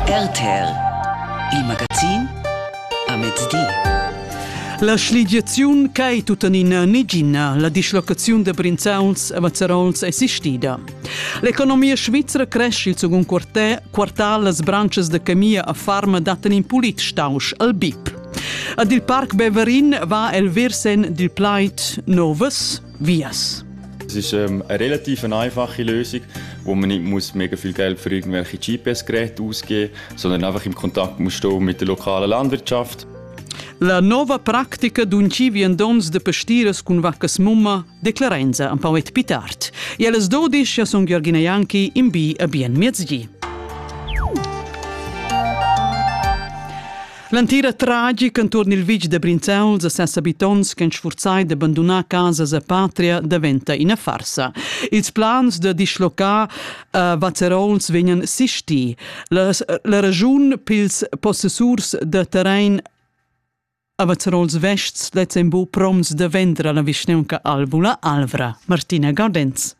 RTL, il magazin a mezdi. La schligiaziun ch'ei tuttenina negina la dislocaziun da Brinzauls a Mazzarols è sistida. L'economia svizra cresce il secund quartal, las branches da Camia a Farma dattan in pulit stausch al BIP. Ad il Parc Beverin va el virsen dil plaid novas Vias. Es ist ähm, eine relativ einfache Lösung, wo man nicht muss mega viel Geld für irgendwelche GPS-Geräte ausgeben muss, sondern einfach im Kontakt muss stehen mit der lokalen Landwirtschaft. La nova practica d'un ci viandons de pastiras cun vaccas mumma declarenza am poet pitart. E alles dodisch ja son Gheorghina Janki in bi a bien miezgi. L'entira tragic enturn il vitg da Brinzauls e ses abitants ch'han sfurzai da bandunar casas e patria daventa ina farsa. Ils plans da dischlocar a Vazerauls vegnan sisti. La, la raschun pils possessurs da terrain a Vazerauls Vests lezzen bu proms da vendre la vischneunca Albula Alvra. Martina Gaudenz.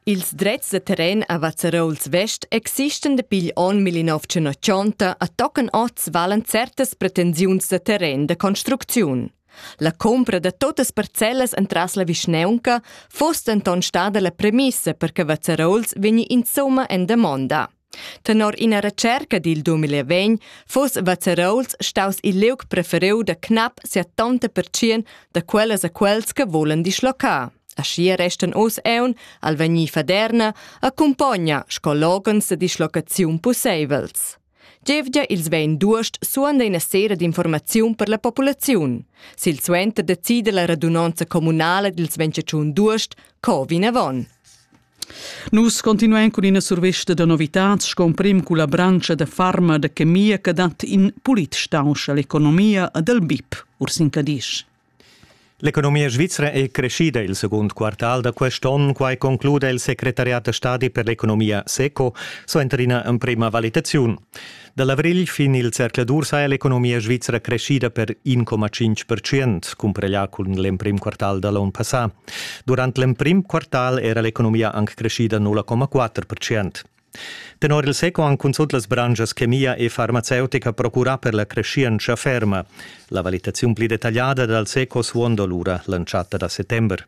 Ils drets da terren a Vazzarouls Vest existan dapi igl onn 1980 e tocan oz valan certas pretensiuns da terren da construcziun. La cumpra da totas parcellas entras la vischneunca fuss denton stada la premissa per che Vazzarouls vegni insumma en damonda. Tenor ina retscherca dil 2020 fuss Vazzarouls staus il liug preferiu da cnap 70% da quellas a quels che volen dischlocar. Aschia restan oz eun al vegnir faderna accumpogna sco loghens de dischlocaziun pusseivels. Gievgia ils 22 suanda ina sera d'informaziun per la populaziun. Silsuenter decida la radunanza communala dils 25 d'uost co vinavon. Nus continuein cun ina survesta da novitads sco emprim culla branscha da farma da chemia che dat in pulit stausch all'economia ed al BIP, Ursin Cadisch. L'economia svizra è creschida il secund quartal da quest onn, quai concluda il secretariat da stadi per l'economia SECO suenter ina emprima valitaziun. Da l'avrigl fin il zercladur saja l'economia svizra creschida per 1,5%, cumpareglià cun l'emprim quartal da l'onn passà. Durant l'emprim quartal era l'economia anc creschida 0,4%. Tenor il SECO han cunzunt las branschas chemia e farmaceutica procurà per la creschientscha ferma. La valitaziun pli detagliada dal SECO suonda lura l'entschatta da settember.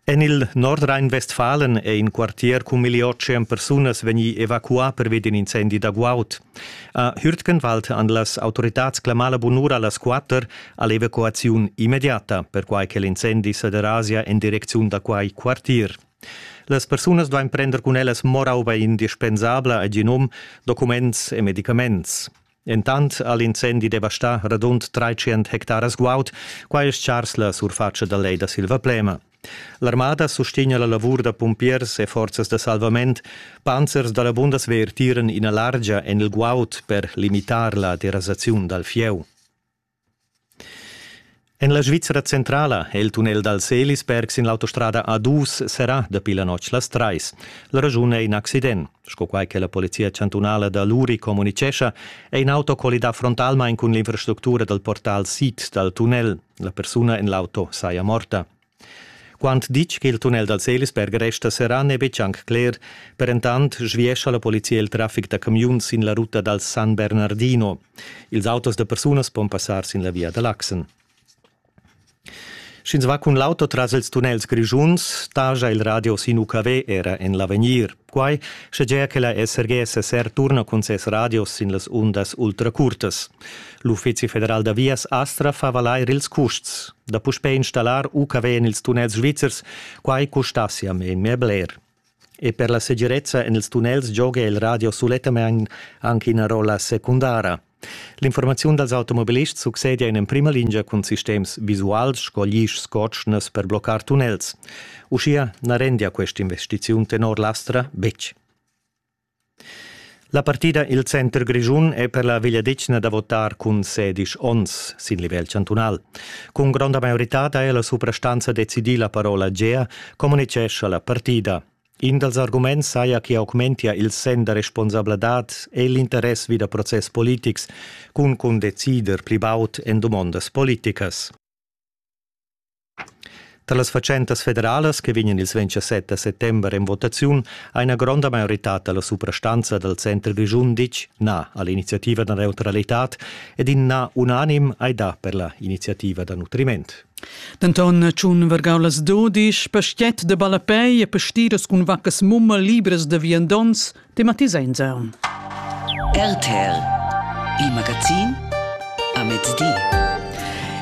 En il Nordrhein-Westfalen è in quartier cun milli otg persunas vegnì evacuà pervi d'in incendi da guaud. A Hürtgenwald han las autoritads clamà la bunura a las quatter a l'evacuaziun immediata, perquai che l'incendi sa derasia en direcziun da quai quartier. Las persunas duain prender cun ellas morauba indispensabla e genum, documents e medicaments. Entant ha l'incendi devastà radund tratschient hectaras guaud, quai è stgars la surfatscha da Lej da Silvaplema. L'armada sustegna la lavur da pumpiers e forzas da salvament. Panzers da la Bundeswehr tiran ina largia en il guaud per limitar la derasaziun dal fieu. En la Svizra centrala è il tunnel dal Selisberg sin l'autostrada A2 serrà dapi la notg las trais. La raschun è in accident. Sco quai che la Polizia chantunala da Luri communicescha, è in auto collidà frontalmain cun l'infrastructura dal portal sid dal tunnel. La persuna en l'auto saja morta. Quant ditg ch'il tunnel dal Selisberg resta serrà n'è betg anc cler, per entant sviescha la polizia il traffic da camiuns sin la ruta dal San Bernardino. Ils autos da persunas pon passar sin la via da Laxen. Sch'ins va cun l'auto tras ils tunnels grischuns, staja il radio sin UKW era en l'avegnir. Quai schegia che la SRG SSR turna cun ses radios sin las undas ultracurtas. L'Uffizi federal da vias Astra fa valair ils custs da puspè installar UKW en ils tunnels svizzers, quai custassia memia bler. E per la segirezza en ils tunnels gioga il radio sulettamain anche ina rolla secundara. L'informaziun dals automobilists succedia in emprima lingia cun sistems visuals sco glischs cotschnas per bloccar tunnels. Uschia na rendia quest'investiziun tenor l'Astra betg. La partida Il Center Grischun è per la vegliadetgna da votar cun sedisch onns sin livel chantunal. Cun gronda maioritad ha ella suprastanza decidì la parola Gea, communitgescha la partida. In dals arguments saja che augmentia il senn da responsabladad e l'interess vi da process politics cun cun decider pli baud en dumondas politicas. Tra las fatschentas federalas che vegnan ils 27 da settember en votaziun ha ina gronda maioritad dalla suprastanza dal center grischun ditg na all'iniziativa da neutralitad ed in na unanim hai dà per la iniziativa da nutriment. Denton tschun vargau las dudisch, pastiet de ballapei e pastiras cun vaccas mumma libras de viandons, tematisenza. RTL, il magazin a mezdi.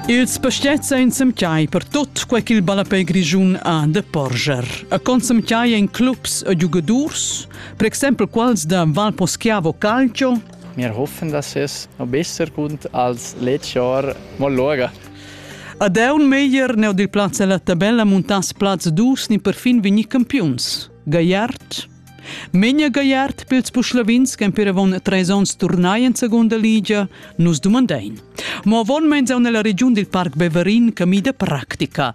Ils pastiets ein semchiai per tut quei ch'il ballapei grischun ha de porscher. A consemchiai ein clubs e giugadurs, per exempel quels da Valposchiavo Calcio, Wir hoffen, dass es noch besser kommt als letztes Jahr. Mal schauen. Ad aun meglier neu dil plaz ella tabella muntass plaz dus ni perfin vegni campiuns. Gaiart Menja Gaiart pils Puschlavins che empirevon treis onns turnai en segunda ligia, nus dumandein. Mo avon meins aun nella regiun dil Parc Beverin camida practica.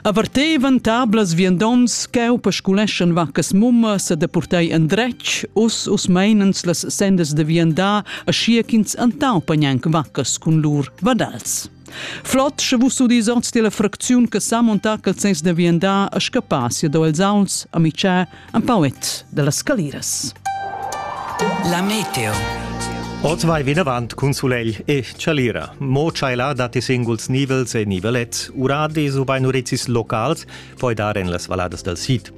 Avertevan tablas viandons cheu pasculeschan vaccas mumma se depurtei endretg, us us meinens las sendas de viandar, aschia ch'ins antau pagnanc vaccas cun lur vadar. Flot, sche vus udis ord della fracziun che sa montar quel sens de viandar a scappar si do els auns, a mitschar, un pauet della scaliras. La meteo. Oz vai vinavant cun sulegl e chalira. Mo tscheila datti singuls nivels e nivelets, urades ubain urezis locals, poi dar en las valladas dal sid.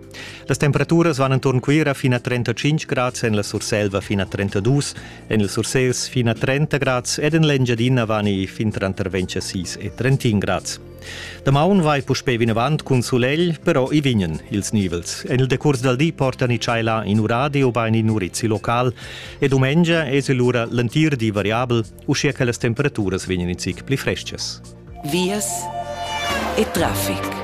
Las temperaturas van enturn Cuira fin a 35 grads, en la Surselva fin a 32 En il Sursels fin a 30 grads ed en l'Engiadina vani fin tranter 26 e 31 grads. Damaun vai puspè vinavant cun sulegl, però i vignan ils nivels. En il decurs dal di portan i tschaila in uradi ubain in urizi local e dumengia es lura l'entir di variabel, uschia che las temperaturas vegnan in zic pli freschas. vias e traffic.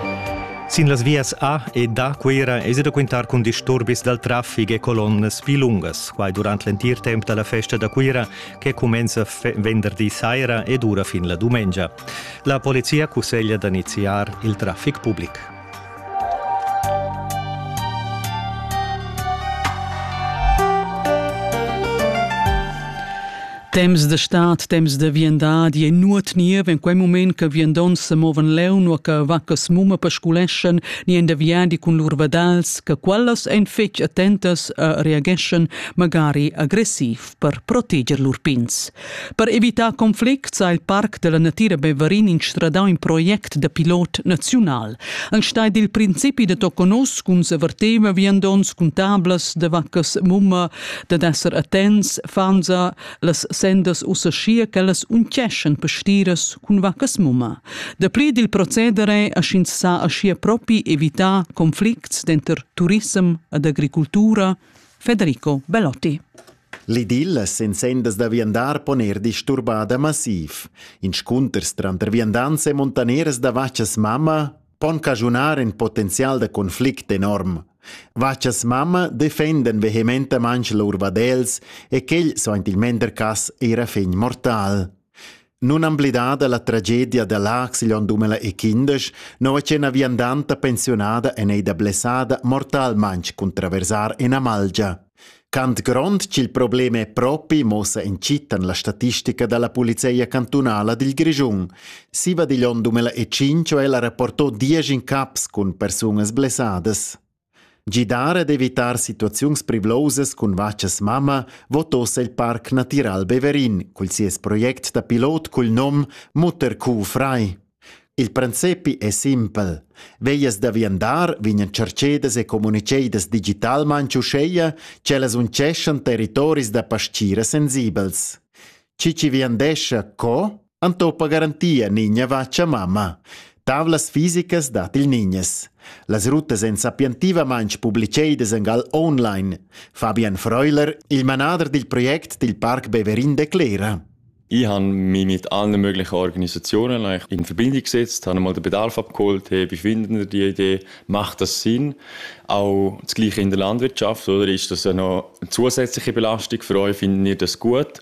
Sin las vias A e da Cuira esi da quintar cun disturbis dal traffic e colonnas pli lungas. Quai durant l'entir temp da la festa da Cuira che cumenza venderdi saira e dura fin la dumengia. La polizia cusseglia da iniziar il traffic public. Temps de stat, temps de viandadi e nuot niev in quei moment che viandonts se movan leu nur che vaccas mumma pasculeschan ni en de viadi cun lur vadals che quellas ein fetg attentas e reageschan magari agressiv. per proteger lur pins. Per evitar conflicts ha il Parc della Natira Beverin instradau in project da pilot naziunal. Enstagl dil principi da toconos cun s'averteva viandonts cun tablas de vaccas mumma dad esser attents fanza las sendas ussa schia ch'ellas unceschen pastiras cun vaccas mumma. Da pli dil procedere aschins sa aschia propi evitar conflicts denter turissem ed agricultura Federico Belotti. L'idyll sin sendas da viandar pon er disturbada massiv. Inscunters tranter viandants e montaneras da vachas mamma pon cagiunar in potenzial da conflict enorm. Vachas mamma defenden vehementamanch lur vadels e quel sointilmender cas era fegn mortal. Nunamblidada la tragedia da Laax igl onn dumeila nua che ina viandanta pensiunada en ei da blessada mortalmaintg cun traversar ina malgia. Cant grond ch'il problem è propi mossa encittan la statistica dalla polizia cantunala dil Grischun. Siva digl onn 2005 è ella rapportò diesch in caps cun persunas blessadas. Gidar ad evitar situaziuns privlosas cun vachas mamma vot ossa il Parc Natiral Beverin cul sies project da pilot cul nom Mutterkuh frei. Il princepi è simpel. Veias da viandar vignan tschercedas e communicedas digitalmain uscheia ch'ellas unceschan territoris da pastgira sensibels. Chi chi viandescha co Antopa garantia nigna vacha mamma. Tavlas fisicas dat il nignes. Las rutas èn sapientivamain publicedas en gal online. Fabian Freuler, il manader dil project dil Parc Beverin declera. Ich habe mich mit allen möglichen Organisationen in Verbindung gesetzt, habe mal den Bedarf abgeholt, hey, wie finden ihr die Idee, macht das Sinn? Auch das Gleiche in der Landwirtschaft, oder? Ist das auch noch eine zusätzliche Belastung für euch? Finden ihr das gut?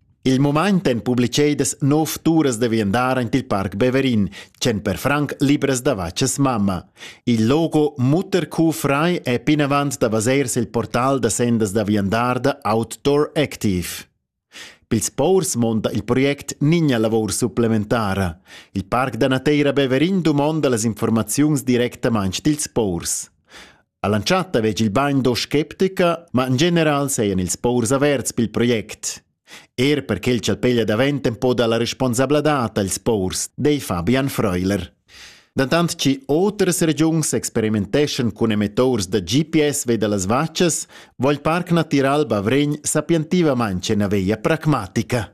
Il mumaint èn publichedas nov turas da viandar aint il Parc Beverin, tschient per franc libras da vachas mamma. Il logo Mutterkuh frei è pinavant davos il portal da sendas da viandar da Outdoor Active. Pils paurs monta il project Nigna lavor supplementara. Il Parc da Nateira Beverin dumonda las informaziuns directamain dils paurs. All'entschatta vegli il bando sceptica, ma in general seien ils paurs averts pil project. Er per quel ch'el peglia davent un po dalla responsabladad als paurs, dei Fabian Freuler. Dantant che otras regiuns experimenteschan cun emetors da GPS ve dallas vaccias, vogl parc natiral Bavregn sapientivamente una veia pragmatica.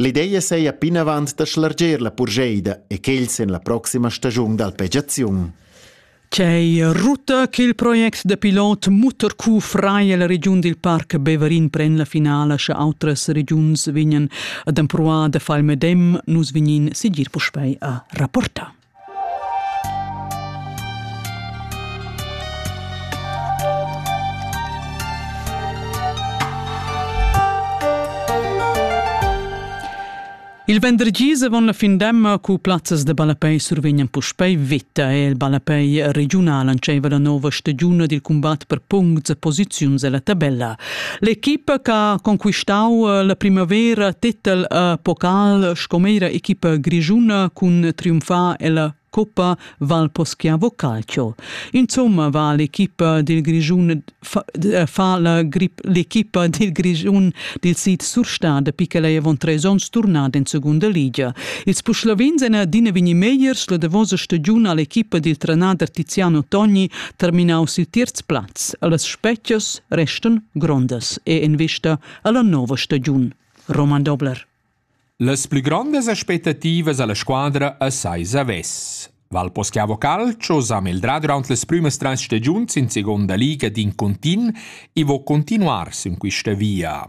L'ideia seia pinavant da schlarger la purgeida e quels en la proxima stagiun d'alpegiaziun. Quei ruta ch'il project da pilot Mutterkuh frei la regiun dil Parc Beverin pren la finala sche outras regiuns vegnan ad empruar da far il medem, nus vegnin sigir puspei a rapportar. Il vendergis avon la findemma cu plazzas de ballapei survegnan puspei veta e il ballapei regiunal entscheiva la nova stagiun dil cumbat per puncts e posiziuns ella tabella. L'equipa che ha conquistau eh, la primavera titel a Pokal sco meira equipa grigiuna cun triumfar ella Coppa Valposchiavo Calcio. Insomma va l'equipa dil Grischun fa la grip l'equipa dil Grischun dil sid Surstad dapi che ei avon treis onns turnada in segunda ligia. Ils Puschlavins ein adina vegni megliers la davosa stagiun all'equipa dil trenader Tiziano Togni terminaus il terz plaz, allas spetgias restan grondas e in vista alla nova stagiun. Roman Dobler. Las pli grondas aspettativas alla squadra assai zavess. Valposchiavo Calcio sa meldrà durant las prümas trais stagiuns in seconda liga d'in continu e vo continuar sin quista via.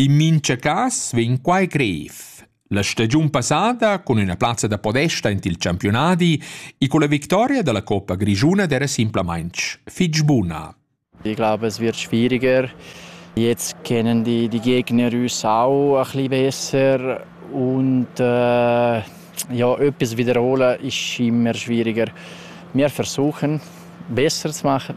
In mincha cas vegn quai grev. La stagiun passada, cun üna plazza da podesta int il campiunadi e con la victoria da la Coppa Grischuna d'era simplamainch fich buna. Ich glaube, es wird schwieriger. Jetzt kennen die, die Gegner uns auch ein bisschen besser und äh, ja, etwas wiederholen ist immer schwieriger. Wir versuchen, besser zu machen.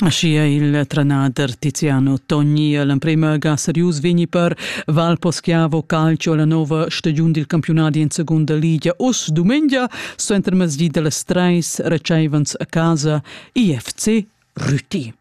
Aschia il trenader Tiziano Togni l'emprema ga serius vegni per Val Poschiavo calcio la nova stagiun dil campionadi in secunda liga us dumengia sto intermezdi dallas treis receivens a casa IFC Rüti.